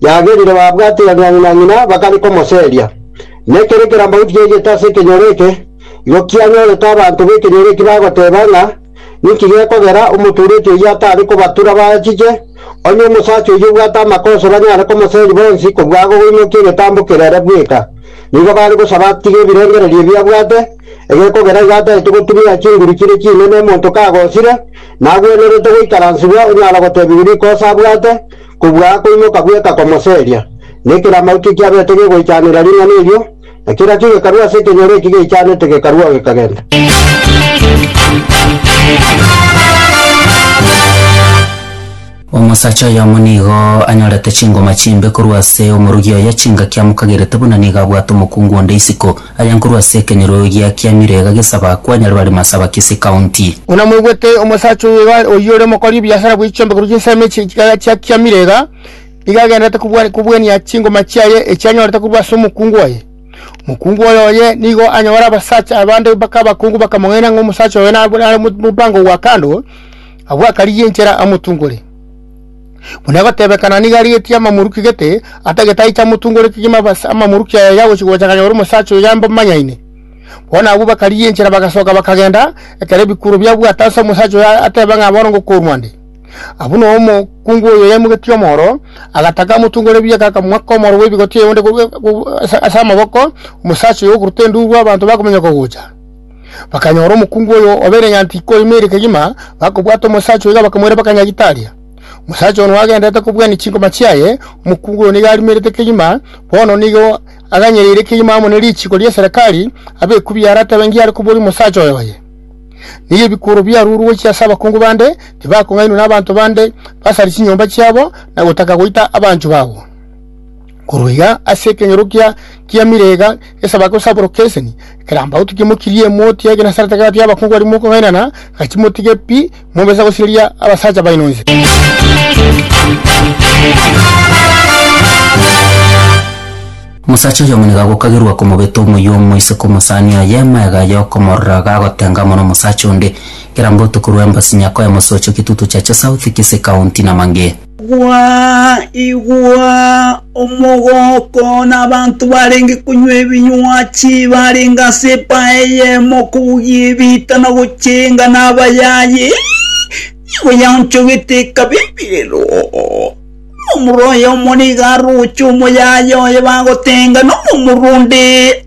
yagerire babwate ya ng'ina na ng'ina bakare komoseria. Na ekero ekerambagu kiaigete ase ekenyoro eke, igo kianyorete abanto b'ekenyoro eki bagoteba ng'a, Ninki gekogera omotureti oyio atare kobatura bachiche, onye omosacha oyio obwate amakosa banyare komoseria bonsi kobua agogoinokia egetambo kerere bweka? Nigo bare gosaba atige ebirengererio ebi abwate, egekogera igo ataete gotumia chinguru chire chinene omonto kagosire, nagwenerete goikaransibwa onyara gotebigwa rikosa abwate, Kobua akoimoka bweka komoseria, na ekero amauto ekiabete gegoichanera ring'ana erio, na kerakio gekarua ase ekenyoro eki geichanete gekaruao gekagenda. Omosacha oyomo nigo anyorete chingoma chimbe korwa ase omorugi oye, chingaki amokagerete buna nigo abwate omokungu onde isiko. Aye nkorwa ase ekenyorogia kia Mirega gesaba kwanyare bare Masaba Kisii County. Buna mwaigwete omosacha oyo iga oyio ore omokori ebiasara bwe chiombe korwa chinsemo echi chiga chia kia Mirega, nigo agendererete kobua kobuania chingoma chiaye echi anyorete korwa ase omokungu oye. Omokungu oye oye nigo anyore abasacha abande baka abakungu bakamong'aina ng'a omosacha oyo nab nare mo mobango gwa kando, abwakarigie enchera amotungore. Buna egotebekana nigo arigetie amamoruki gete, atagete aiche amotungoretie chimabase amamoruki aya yagochia gocha akanyora omosacha oyo yambamanyaine. Bono abwo bakarigia enchera bagasoka bakagenda, ekero ebikuro biabwate ase omosacha oyo ateba ng'a bono ngokorwa nde. Abwo nao omokungu oyo yaimogetie omoro, agataka amotungore bieka akamwa komoro gw'ebigoti onde ase amaboko, omosacha oyo okoruta enduru abanto bakominyoka gocha. Bakanyora omokungu oyo obeire ng'a tikoima ere kegima, bakobwata omosacha oiga bakamoira baka Nyagitaria. Omosacha ono agendererete kobwania chinkoma chiaye, omokungu oyo nigo arimerete kegima, bono nigo aganyereire kegima amo ne richiko ria Serekari, abe ekubi yare atebe ngiare koboria omosacha oyo oye. Nigo ebikworo biarurwe gochia ase abakungu bande, tibakong'ainwa nabaanto bande basare chinyomba chiabo, na gotaka goita abanchwa babo. Korwa iga ase ekeng'erokia kia Mirega esaba gosabora Keseni, ekerambaoto kimokirie emoti y'egenasarete gati y'abakungu baria mokong'ainana, gati motige pi, mobise gosireria abasacha baino inse. Omosacha oyomo nigo agokagerwa komobeta omoyio omo isiko omosani oye, magega aye okomorora iga agotenga amo nomosacha onde, ekerambaoto korwa embasi nyakwa y'emosoocho, Kitutu Chache South, Kisii County, Namangi. Igwaa, igwaa! Omogooko nabaanto barenge konywa ebinywa chibarenge ase empaya eyemo kobugia ebiita na gochenga nabayayi, nigo yaonchogete ekabe emerero. Omorwaya omo nigo aroche omoyayi oye bagotenga nomorwaya onde.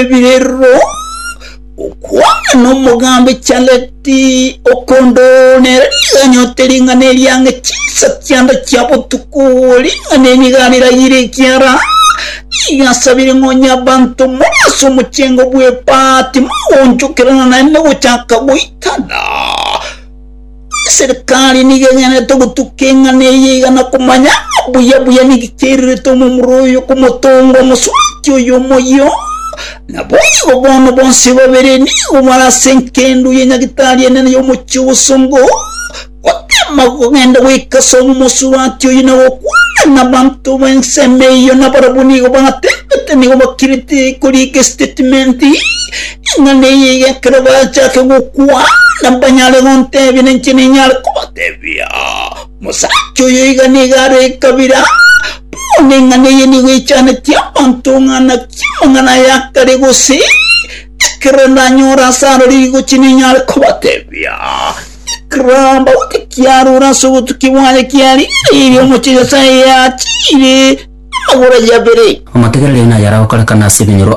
ebirero, okwana nomogambi Charleti okondo nere niganyote ring'ana eriange chinsa chiande chia botuko, ring'ana enigariraire ekiara nigasabire ng'a onye abanto more ase omochengo bw'epaati mogonchokerana naende gochaka goitana. Eserikari nigo egenete ogotuka eng'ana eye iga na komanya buya buya niki kiairerete omomura oyo komotonga omosubati oyo omoyio. Naboigo bono bonsi babere nigo bare ase enkendo ye nyagitari enene y'omochie obosongo, gotema kogenda goika ase omosubati oyo na gokwana nabanto b'ensemo eyio, nabarabwo nigo bagatebete nigo bakirete koriika estatement. Ing'ana eye iga ekero bachake gokwana mbanyare gontebia, na inche ninyare kobatebia, Omosacha oyo iga nigo are ekabira. Bono ing'ana eye nigo eichanetie abanto ng'ana ki amang'ana aya akare, gose ekero ndanyore ase aroro rigochi ninyare kobatebia, Ekero amauta kiarure ase obotukia bwaye kia riiri, omochie Nyasae yachiire amagoro aye abere. Amategera rire nayare agokorekana ase ebinyoro.